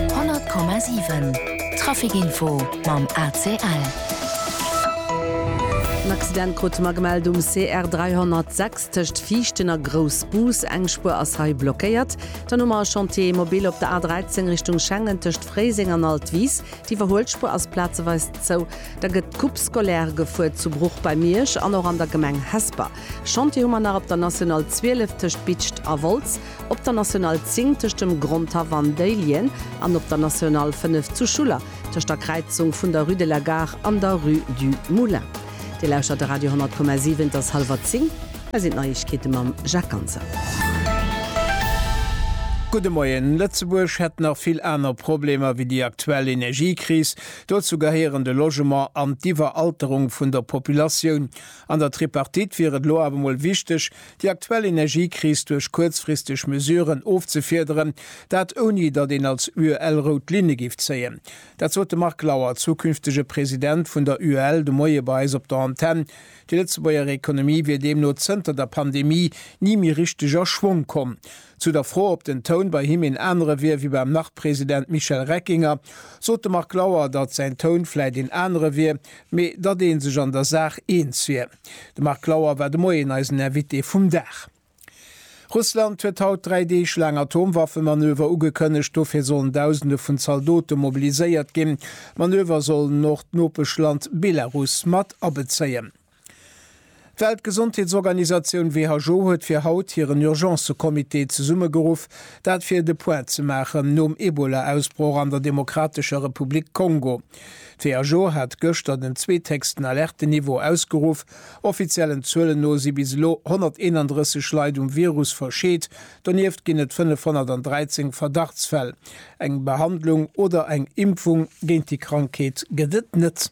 100,7 Trafic Info mam ACL. En Accident krute mer gemellt um CR 306 tëscht Viichten a Groussbus. Eng Spuer ass hei blockéiert. Dann hu mer e Chantier mobil op der A 13 Richtung Schengen tëscht Fréiseng an Altwis. D'Iwwerhuelspuer ass plazeweis zou. Da gëtt d'Coupe scolaire gefuer zu Bruch bei Miersch an och an der Gemeng Hesper. Chantier hu mer nach op der National 12 tëscht Bitscht a Wolz. op der National 10 tëscht dem Grondhaff an Déihlien an op der National 5 zu Schuller tëscht der Kräizung vun der Rue de la Gare an der Rue du Moulin. Dir lauschtert de Radio 10,7, et ass hallwer 10, hei sinn d'Neiegkeete mam Jacques Ganser. Gudde Moien. Lëtzebuerg hätt nach vill aner Problemer wéi déi aktuell Energiekris. Dozou gehéieren de Logement an d'Iwweralterung vun der Populatioun. An der Tripartite wier et elo awer mol wichteg, Déi aktuell Energiekris duerch kuerzfristeg Mesuren ofzefiederen, dat ouni datt een als UEL rout Linne géif zéien. Dat sot de Marc Lauer, zukünftege President vun der UEL de Moie bei eis op der Antenn. Déi Lëtzebuerger Ekonomie wier deemno zënter der Pandemie ni méi richteg a Schwong komm. Zu der Fro, ob den Toun bei him een anere wier wéi beim Nach-President Michel Reckinger, sot de Marc Lauer, datt säin Toun vläicht een anere wier, mee datt ee sech an der Saach eens wier. De Marc Lauer war de Moien eisen Invité vum Dag. Russland huet haut dräi Deeg laang Atomwaffemanöver ugekënnegt. Dofir sollen Dausende vun Zaldote mobiliséiert ginn. D'Manöver sollen och d'Nopeschland Belarus mat abezéien. D'Weltgesondheetsorganisatioun WHO huet fir haut hiren Urgence-Comité zesummegeruff, dat fir de Point ze maachen nom Ebola-Ausbroch an der Demokratescher Republik Kongo. D'WHO hat gëschter den zweethéchsten Alerte-Niveau ausgeruff. Offiziellen Zuelen no si bis elo 131 Leit um Virus verscheet, donieft ginn et 513 Verdachtsfäll. Eng Behandlung oder eng Impfung géint déi Krankheet gëtt et net.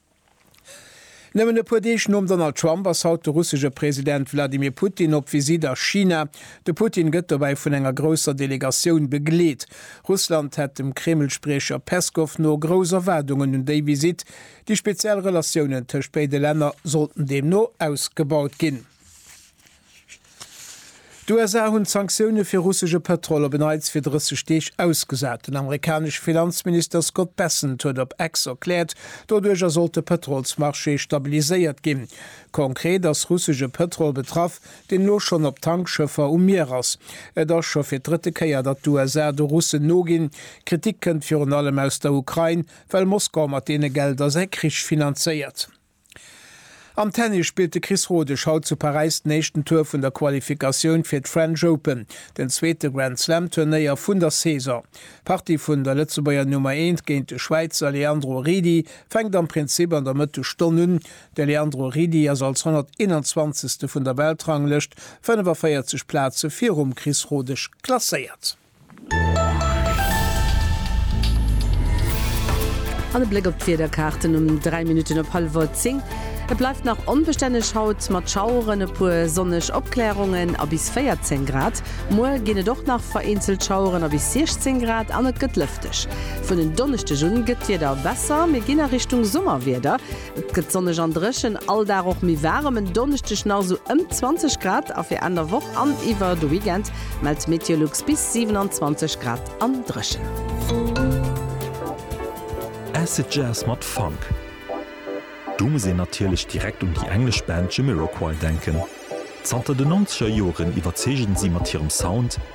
Nëmmen e puer Deeg nom Donald Trump ass haut de russesche President Wladimir Putin op Visitt a China. De Putin gëtt dobäi vun enger grousser Delegatioun begleet. Russland hätt dem Kreml-Spriecher Peskow no grouss Erwaardungen un déi Visitt. Déi speziell Relatiounen tëscht béide Länner sollten deemno ausgebaut ginn. D'USA hunn d'Sanktioune fir russesche Pëtrol op en Neits fir 30 Deeg ausgesat. Den amerikanesche Finanzminister Scott Bessent huet op X erkläert, doduercher sollt de Pëtrolsmarché stabiliséiert ginn. Konkret ass russesche Pëtrol betraff, deen elo schonn op Tankschëffer um Mier ass. Et ass scho fir d'drëtte Kéier, datt d'USA de Russen noginn. Kritik kënnt virun allem aus der Ukrain, well Moskau mat deene Gelder säi Krich finanzéiert. Am Tennis spillt de Chris Rodesch haut zu Paräis den éischten Tour vun der Qualifikatioun fir d'French Open, den zweete Grand Slam Turnéier vun der Saison. D'Partie vun der Lëtzebuerger Nummer eent géint de Schwäizer Leandro Ridi fänkt am Prinzip an der Mëttesstonn un. De Leandro Ridi ass als 121. vun der Weltranglëscht 45 Plaze virum Chris Rodesch klasséiert. An e Bléck op d'Wiederkaarten um 3 Minutten op hallwer 10. Et bleift nach onbestänneg haut mat Schaueren, e puer sonneg Opklärungen a bis 14 Grad. Muer ginn et och nach vereenzelt Schaueren a bis 16 Grad an et gëtt lëfteg. Vun en Donneschdeg un gëtt d'Wieder besser, mir ginn a Richtung Summerwieder. Et gëtt sonneg an dréchen, all Dag och méi waarem, en Donneschdeg nach sou ëm 20 Grad a fir Enn der Woch an iwwer de Weekend mellt d'Meteolux bis 27 Grad an dréchen. Acid Jazz mat Funk, do muss een natierlech direkt un déi englesch Band Jamiroquai denken. Zanter den Nonzeger Joren iwwerzeegen si mat hirem Sound,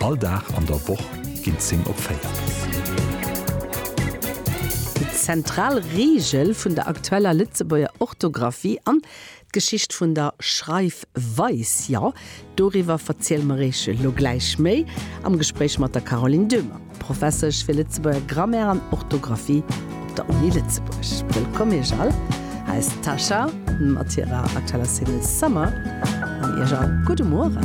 All Dag an der Woch ginn 10 op 4. Déi zentral Reegel vun der aktueller Lëtzebuerger Orthografie an d'Geschicht vun der Schreifweis, jo, doriwwer verziele mer Iech elo gläich méi am Gespréich mat der Caroline Döhmer, Professesch fir Lëtzebuerger Grammaire an Orthografie op der Uni Lëtzebuerg. Wëllkomm Iech all! Hei ass d'Tascha mat hirer aktueller Single Summer an Iech all gudde Mueren!